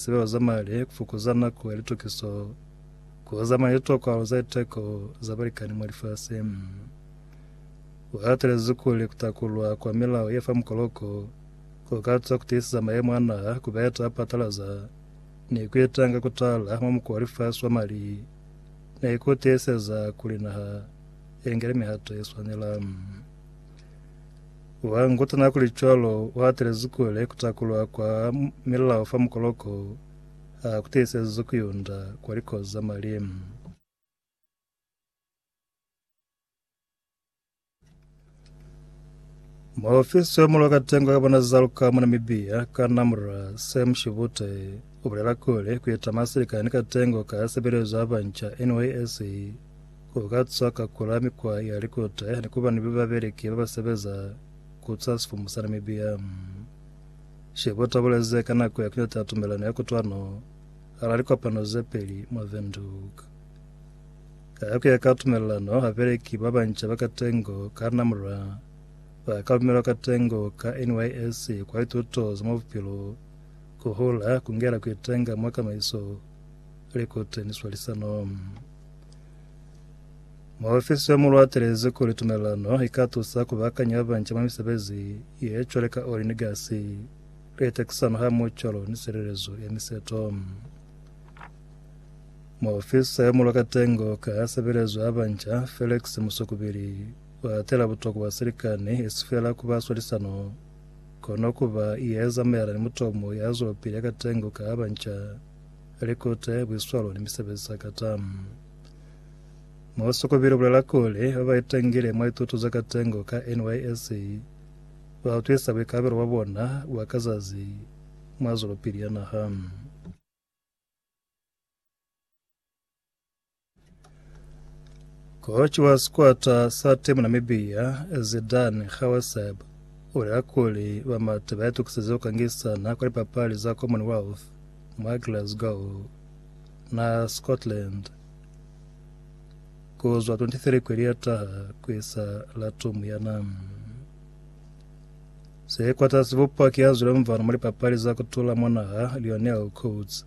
Sibalo za mali, ku fukuza nako ya litukiso, ku hozama ni litokwalo za liteko za balikani mwa lifasi. U hatelezi kuli ku takulwa kwa milao ye fa mukoloko ku ka tusa ku tiiseza mayemo a naha ku ba ye ta patalaza ni ku itanga ku tala mwa mukuwa wa lifasi wa mali ni ku tiiseza kuli naha i ngele mihato ye swanela. Wa nguta na kuli cwalo u hatelezi kule ku takulwa kwa milao fa mukoloko ha ku tiisezi ku yunda kwa likozi za mali. Muofisi yo mulo ka tengo ka bona za luka mwa Namibia, Kanamra Sam Shivute, u bulela kuli ku ita masilikani ka tengo ka sebelezo ya banca, NYSC, ku ka tswa ka kula mikwa ya likota ni kuba ni babeleki ba ba sebeza ku tswa sifumu sa Namibia. Shebo tabuleze ka nako ya kinyota ya tumelano ya kutwano ala likopano ze peli mwa Windhoek. Ka ku ya ka tumelano, babeleki ba banca ba katengo ka Namra ba ka lumelwa katengo ka NYSC kwa lituto za mwa bupilo, ku hula, ku ngela, ku itenga mwa kamaiso, likute ni swalisano. Muofisi yo mulwa atelezi kuli tumelelano i ka tusa ku bakanya ba banca mwa misebezi ye cwale ka oli ni gasi, litekisano hamoho cwalo ni silelezo ya miseto. Muofisa yo mulwa katengo ka sebelezo ya banca, Felix Musukubili, u atela butokwa bwa silikani esi fela ku ba swalisano kono ku ba ye zamaelana ni mutomo ya zwelopili ya katengo ka banca. Likute, buiswalo ni misebezi za kata. Musikubili ubulela kuli, ba ba itangile mwa lituto za katengo ka NYSC ba utwisa buikalabelo bwa bona bwa ka zazi mwa zwelopili ya naha. Koci wa sikwata sa timu Namibia Zidane Kgawesab ulela kuli bamati bayatukiseza kukangisana kwa lipapali za Commonwealth mwa Glasgow na Scotland kuzwa 23 kweli yataha kuisa la tumu yana. Sikwata sibupwa ki yazwile mvano mwa lipapali za kutula mwa naha Lionel Coates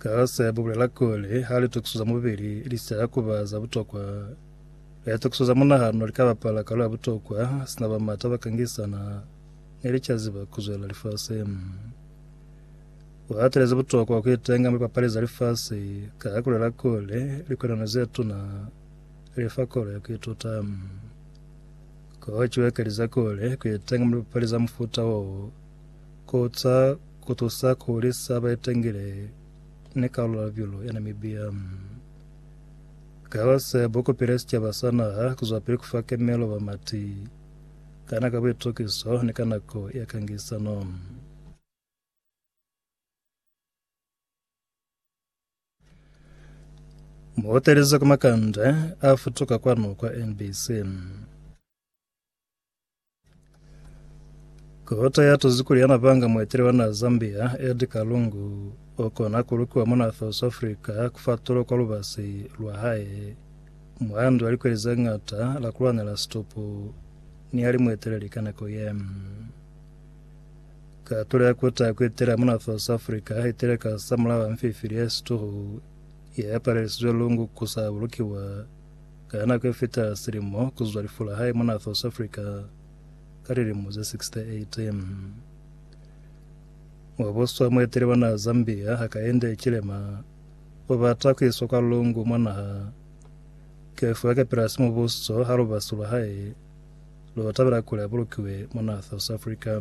Kaose bubulela kuli ha litokiso za mubili li sa ya kuba za butokwa, litokiso za munahano li ka bapala kalu ya butokwa sina ba mata ba kangisana ne li ca ziba ku zwela lifasi. U atelezi butokwa ku itenga mwa lipapali za lifasi ka ha kulela kuli likolano ze tuna li fa kolo ya ku ituta. Kochiwe kalize kuli ku itenga mwa lipapali za mufuta wo Ku za ku tusa ku hulisa baitangile ni kalulabilo ya Namibia. Kala se bu kupile sicaba sa naha ku zwapili ku fa kemelo bamati kana ka buitukiso ni ka nako ya kangisano. Muhotelize ku makande a futuka kwanu kwa NBC. Kota ya tuzi kuli yana panga muetele wa na Zambia Edgar Lungu o kona ku lukiwa mona South Africa ku fa tulo kwa lubasi lwa hae mwandu wa likweli ze ngata la ku lwanela situpu ni ya li mueteleli ka nako ye. Katulo ya kuta ku etela mona South Africa itele ka sa mulao wa mfifili ya situhu ye palelisize Lungu ku sa bulukiwa Ka nako ye fita silimo ku zwa lifu la hae mona South Africa ka lilimo ze 68, wa boswa mueteli wa naha Zambia Hakainde Hichilema o bata ku iswa kwa lungu mwa naha ke fuwa ke pilasi mubuso ha lubasu lwa hae lo tabela kuli a bulukiwe mona South Africa.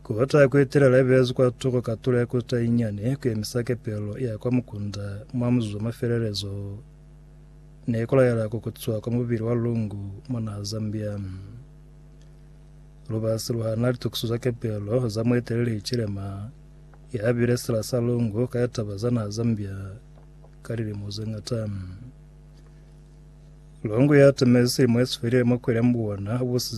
Kota ya kuetelela ibelezwi kwa tuko ka tulo ya kota inyane kuemisa kepelo ya kwa mukunda mwa muzuzu wa mafelelezo ne kulaela kukutswa kwa mubili wa lungu mona Zambia. Lubasi luhana litukiso za kepelo za mueteleli Hichilema ya bile sila sa lungu ka litaba za naha Zambia ka lilimo ze ngata. Longo ya tamezi silimo esifelile mwa kwele mbuwana busize